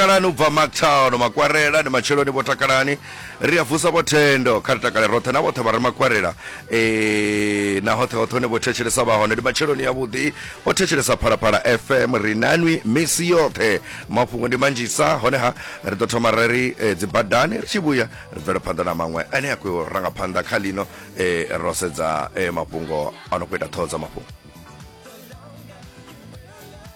takalani u bva mactown makwarela ndi matsheloni vho takalani ri a vusa vho thendo kha ri takale roṱhe na vhoṱhe vha re makwarela e, na hoṱhe hoṱhe hone vho thetshelesa vha hone ndi matsheloni yavhuḓi vho thetshelesa phalaphala fm ri nanwi misi yoṱhe mafhungo ndi manzhisa honeha ri ḓo thoma ra ri e, dzibadani ri tshi vhuya ri bvela phanḓa na maṅwe ane a khou ranga phanḓa kha lino e, ro sedza e, mafhungo a no khou ita ṱhoho dza mafhungo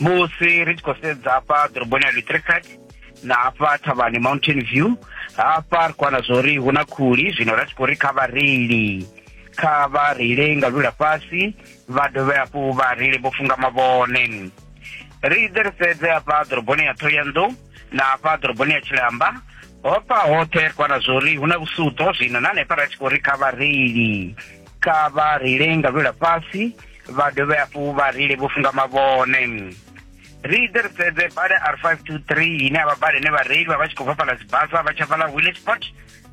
musi ri tshi khou sedza hafha ḓoroboni ya litricat na hafha thavhani mountain view hafha ri khou wana zwa uri hu na khuli zwino ra tshi khou ri kha vhareili kha vha reile nga lula fhasi vha dovhe hafhu vha reile vho funga mavhone ri ḓe ri sedze hafha ḓoroboni ya thoyanḓou na hafha ḓoroboni ya tshilamba hofha hoṱhe ri khou wana zwa uri hu na vhusutho zwino na hanefha ra tshi khou ri kha vhareili kha vha ri lenga lwela fhasi vha dovhe hafhu vha ri le vho funga mavhone ri ite ri sedze bada r 523 ine avha bada ine vhareili vha vha tshi khou fhafhala dzibasa vha tsha fhala willesport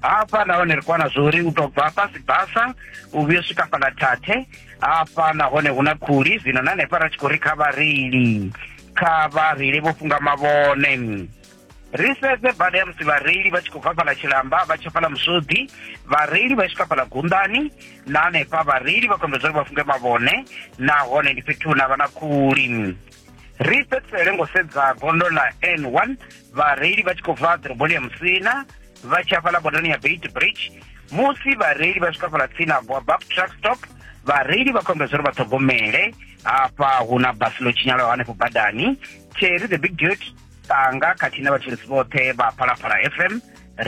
hafha nahone ri kwana zwori u to bva fhasi basa u vhuyo swika fhala thathe hafha nahone hu na khuli zwino na hanefha ra tshi khou ri kha vhareili kha vhareili vho funga mavhone ri sedze bada ya musi vhareili vha tshi khou bva fhala tshilamba vha tsha fhala musodi vhareili vha swika fhala gundani na hanefha vhareili vha kombedza uri vha funge mavhone nahone ndi fhethu na vha na khuli ri fhedzisele ngo sedza gondo ḽa n one vhareili vha tshi khou bva ḓoroboni ya musina vha tshi afhala bondani ya bait bridge musi vhareili vha swika fhala tsini ha boabab truck stop vhareili vha khombedza uri vha ṱhogomele hafha hu na basi ḽo tshinyalaho hanefho badani cherry the big duty tanga khathihi na vhathetshelesi vhoṱhe vha phalaphala fm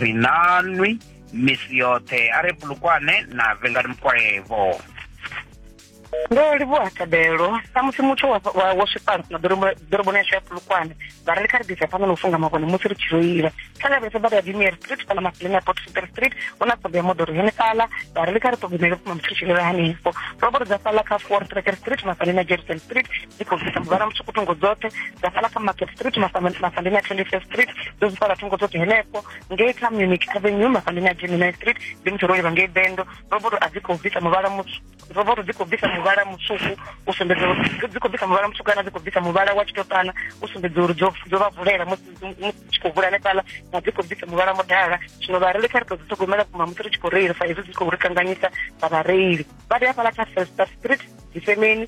ri nanwi misi yoṱhe a re bulukwane na vengani mukwevho ndo livhuwa thabelo samusi muthu wo swifhano na ḓoroboni yashu ya pulukwane vha ri ri kha ri ḓisa phanḓa na u funga makone musi ri tshi reila kha lavhelesa bada ya dimier street fhala masileni ya port super street hu na ṱhoḓo ya moḓoro yone fhala vha ri ri kha ri ṱhogomele vhukuma musi ri tshi reila hanefho ro vho ri dza fhala kha four tracker street mafhaleni ya jerusalem street dzi khou bvisa muvhala mutswuku thungo dzoṱhe dza fhala kha market street mafandeni a twenty first street dzo dzi fhala thungo dzoṱhe henefho ngei kha munich avenue mafandeni a gemini street ndi muthu ro livha ngei bendo roboto a dzi khou bvisa muvhala roboto dzi khou bvisa muvhala mutswuku u sumbedza uri dzi khou bvisa muvhala mutswuku kana dzi khou bvisa muvhala wa tshitopana u sumbedza uri dzo vha vulela musi tshi khou vula hanefhala na dzi khou bvisa muvhala mudala zwino vhareili kha ri tou dzi ṱhogomela kuma musi ri tshi khou reila sa izwi dzi khou ri kanganyisa vha vhareili vha ri hafhala kha festa street dzifemeni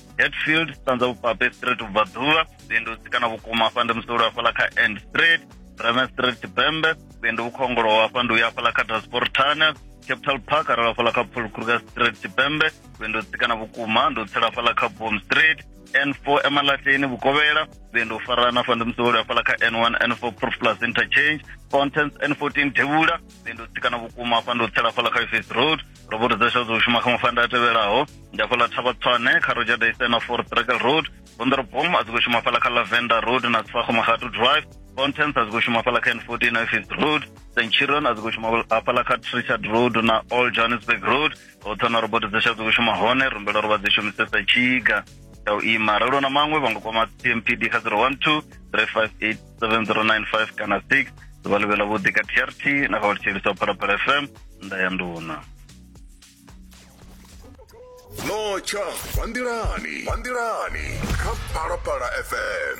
hetfield sanza vhupape street ubva ḓuvha vhuendudzi kana vhukuma hafha ndi musolo hafhaḽa kha end street brame street tshipembe vhuendi vhukhongoloho hafha ndi uya hafhaḽa kha transport tunnel capital park arali hafhaḽa kha paul kruger street tshipembe vhuendi u tsikana vhukuma ndi u tsela hafhaḽa kha bom street n4 emalahleni vhukovhela vhuendi u farana hafha ndi musevholi hafhaḽa kha n1 n4 proof plus interchange contents n14 devhula vhuendi u tsikana vhukuma hafha ndi u tsela hafhaḽa kha face road ro vho ri ḓo xo ḓo shuma kha mafanda a tevhelaho ndi hafhaḽa thavha tswane kha roger daysena for brackle road bonderobom a dzi khou shuma hafhaḽa kha lavender road na tsfago magatu drive fountains a dzi khou shuma hafhaḽa kha n fourteen office road centurion a dzi khou shuma hafhaḽa kha trichard road na all johannesburg road ho thona robot dzi xa dzi khou shuma hone rumbela uri vha dzi shumisesa tshiga ya u ima ralo na maṅwe vha nga kwama tmpd kha 012 358 7095 kana 6 ḓuvha ḽivhe ḽa vhuḓi ka trt na kha vhutshilisa phalaphala fm nda ya nduna notsha vhandilani vhandilani kha phalaphala fm